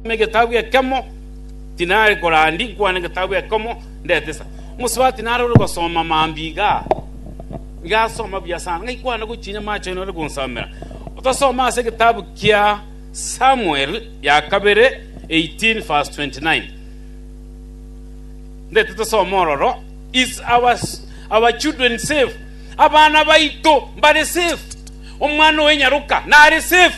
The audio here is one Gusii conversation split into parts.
Ime egetabu ekemo tinare korandi nkwane egetabu ekomo ndetesa mosubati nare ore gosoma mambi iga igasoma buya sana ngaikwana gochinya macho ino ore gonsomera otasoma ase egetabu kia samuel ya kabere 18 verse 29 ndete tosoma ororo is our, our children safe abana baito mbare safe omwana owe nyaroka nare safe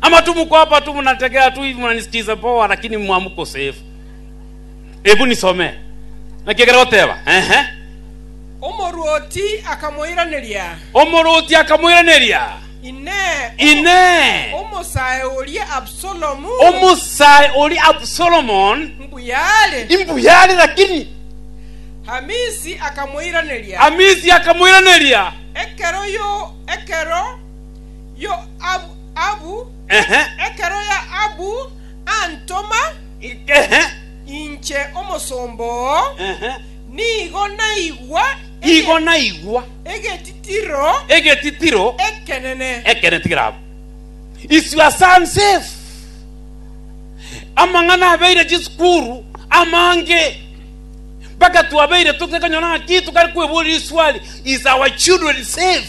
Amatumu kwapa tu munategera tu hivi munanisikiza poa lakini mwamu kosefu. Ebu nisome. Naki ekero goteba. Ehe. Omorwoti akamoiraneria, Omorwoti akamoiraneria, Inee, o- Inee, omosae oria Absalomu omosae ori Absalomon mbuyare? imbuyare lakini Hamisi akamoiraneria, Amisi akamoiraneria, ekero yo ekero Yoabu, Ehe. Ekero Yoabu antoma Ehe. inche omosomba oo, Ehe. nigo naigwa ege- Igo naigwa egetitiro egetitiro ekenene. ekene tigirabo iswe ase ansefu amang'ana abeire chisukuru amange mpaka twabeire totekonyora ng'a ki tokare kweborera iswali is our children safe